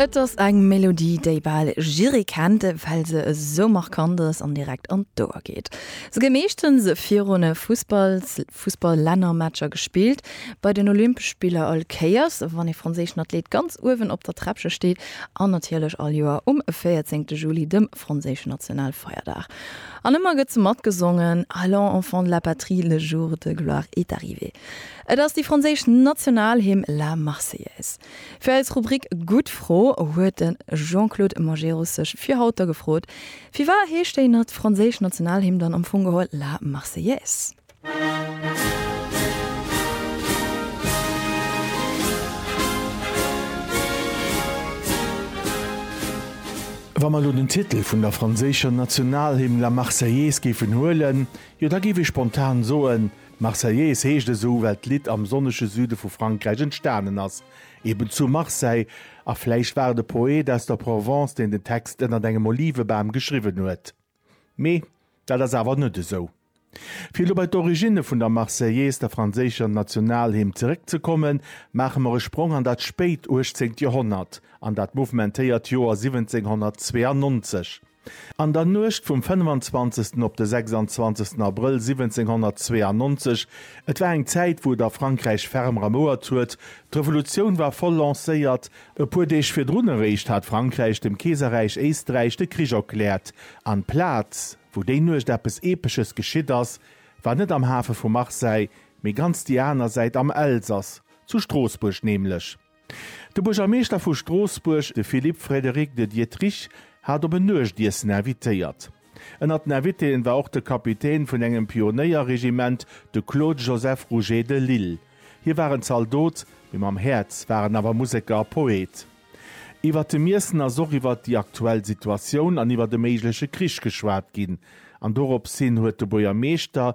Et ass eng Melodie, déi bal jidderee kennt, well se esou markant ass an direkt an d'Ouer geet. Se gouf meeschtens virun Fussballs Fussball-Lännermatcher gespillt, bei den Olympesch Spiller all Kéiers, wann ee franséischen Athlet ganz uewen op der Träppche steet, an natierlech all Joer um 14 Juli, dem franséischen Nationalfeierdag. An ëmmer gëtt se matgesongen, Allons, enfants de la patrie, le jour de gloire est arrivé. Et ass déi franséisch Nationalhymn La Marseillaise. Fir eis Rubrik Gutt Fro huet de Jean-Claude Majerus sech fir haut da gefrot, Firwat heescht déi na franséisch Nationalhymn dann am Fong geholl La Marseillaise? Wa mer elo den Titel vun der franséischer Nationalhymn La Marseillaise géifen huelen, jo da géif ee spontan soen, D'Marseillaise heescht esou, well d'Lidd am sonnege Süde vu Frankräich entstanen ass, eben zu Marseille, a vläicht war et e Poet aus der Provence, deen den Text ënnert engem Olivebam geschriwwen huet. Mee dat ass awer net esou. Fir elo bei d'Originne vun der Marseillaise, der franséischer Nationalhymn, zeréckzekommen, maache mer e Sprong an dat spéit uechtzéngt Joerhonnert, an dat mouvementéiert Joer 1792. An der Nuecht vum 25. op de 26. Abrëll 1792, et war eng Zäit, wou et a Frankräich ferm ramouert huet, d'Revolutioun war voll lancéiert, e puer Deeg virdrun eréischt hat Frankräich dem Keeserräich Éisträich de Krich erkläert, an d'Plaz, wou déi Nuecht eppes Epesches geschitt ass, war net am Hafe vu Marseille, mee ganz déi aner Säit, am Elsass, zu Stroossbuerg nämlech. De Buergermeeschter vu Stroossbuerg, de Philippe Frédéric de Diederich, hat op en Nuechtiessen invitéiert. Ënnert den Invitéen war och de Kapitän vun engem Pionéierregiment, de Claude Joseph Rouget de Lisle. Hie war en Zaldot, mee mam Häerz war en awer Museker a Poet. Iwwert dem Iessen ass och iwwert déi aktuell Situatioun an iwwert e méigleche Krich geschwat ginn an doropshin huet de Buergermeeschter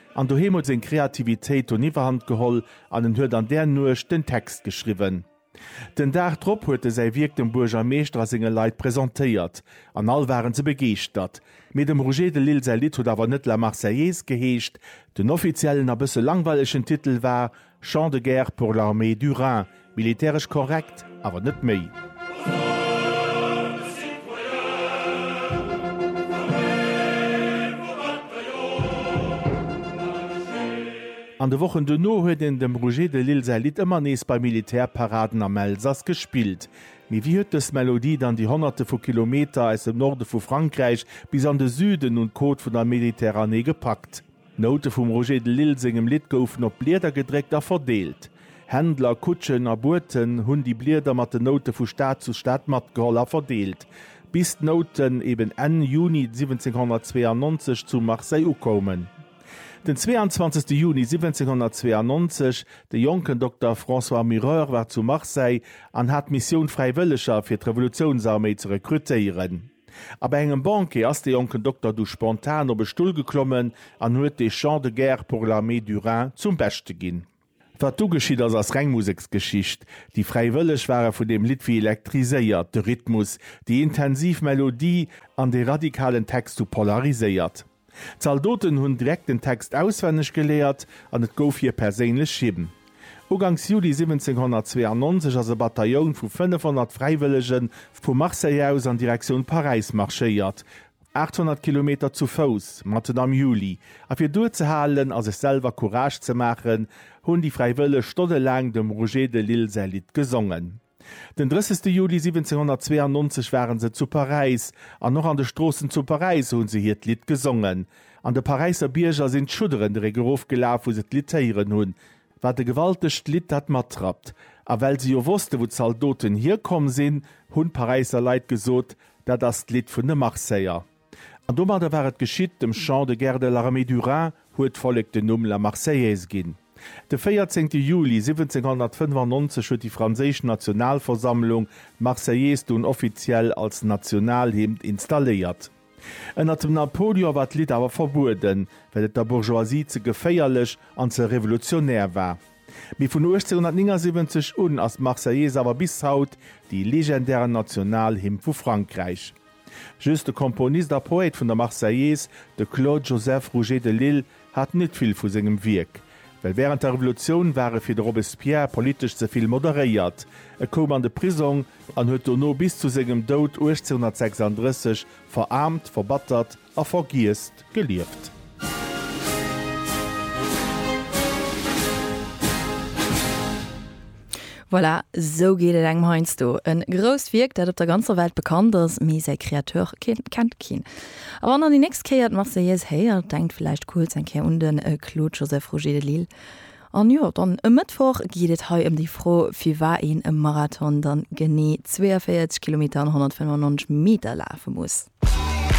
An doheem huet seng Kreativitéit dunn Iwwerhand geholl an en huet an där Nuecht den Text geschriwwen. Den Dag drop huet e säi Wierk dem Buergermeeschter a senge Leit presentéiert an all waren se begeeschtert. Mee dem Roger de Lisle säi Lidd huet awer net La Marseillaise geheescht. Den offiziellen a bësse langweilegen Titel war Chant de guerre pour l'armée du Rhin, militäresch korrekt, awer net méi. An de Wochen duerno huet een dem Roger de Lisle säi Lidd ëmmer nees bei Militärparaden am Elsass gespillt. Mee wéi huet dës Melodie dann déi Honnerte vu Kilometer aus dem Norde vu Frankräich bis an de Süden un d'Côte vun der Mediterranée gepackt? D'Noute vum Roger de Lisle sengem Lidd goufen op Blieder gedréckt a verdeelt. Händler, Kutschen a Boten hunn déi Blieder mat den Noute vu Stad zu Stad matgeholl a verdeelt, bis d'Nouten eben Enn Juni 1792 zu Marseille ukoumen. Den 22. Juni 1792, de jonken Dokter François Mureur war zu Marseille an hat d'Missioun, Fräiwëlleger fir d'Revolutiounsarméi ze rekrutéieren. A bei engem Banquet ass de jonken Dokter du spontan op e Stull geklommen an huet de Chant de guerre pour l'armée du Rhin zum Beschte ginn. Wat du geschitt ass, ass reng Museksgeschicht. Déi Fräiwëlleg ware vun deem Lidd wéi elektriséiert, de Rhythmus, déi intensiv Melodie an de radikalen Text hu polariséiert. D'Zaldoten hunn direkt den Text auswenneg geléiert an et gouf hir perséinlech Hymn. Uganks Juli 1792 ass e Batailloun vu 500 Fräiwëllege vu Marseille aus an Direktioun Paräis marschéiert, 800 Kilometer zu Fouss, matten am Juli, a fir duerzehalen a sech selwer Courage ze maachen, hunn déi Fräiwëlleg stonnelaang dem Roger de Lisle säi Lidd gesongen. Den 30 Juli 1792 waren se zu Paräis, an och an de Stroossen zu Paräis hunn se hiert Lidd gesongen. An de Paräisser Bierger sinn d'Schudderen de Réck erof gelaf, wou se d'Lidd héieren hunn. Wat e gewaltegt Lidd dat matrappt! A well se jo wossten, wou d'Zaldoten hierkomm sinn, hunn d'Paräisser Leit gesot, Dat ass d'Lidd vun de Marseiller. An domadder war et geschitt, dem Chant de guerre de l'armée du Rhin huet d'Vollek den Numm La Marseillaise ginn. De 14 Juli 1795 huet déi franséisch Nationalversammlung d'Marseillaise dunn offiziell als Nationalhymn installéiert. Ënnert dem Napoleon war d'Lidd awer verbueden, well et der Bourgeoisie ze geféierlech an ze revolutionär war. Mee vun 1879 un ass d'Marseillaise awer bis haut déi legendären Nationalhymn vu Frankräich. Just de Komponist a Poète vun der Marseillaise, de Claude Joseph Rouget de Lisle, hat net vill vu sengem Wierk, well wärend der Revolutioun war e fir de Robespierre politesch ze vill moderéiert. E koum an de Prisong an huet dono bis zu sengem Doud 1836 veraarmt, verbattert, A vergiesst gelieft. Voilà, sou geet et engem heiansdo. E grousst Wierk, dat op der ganzer Welt bekannt ass, mee säi Kreateur kennt keen. A wann der déi nächst Kéier d'Marseillaise héiert, denkt vläicht kuerz eng Kéier un de Claude Joseph Roger de Lisle. An jo, dann e Mëttwoch geet et hei ëm déi Fro, firwat een e Marathon dann genee 42 Kilometer an 195 Meter lafe muss.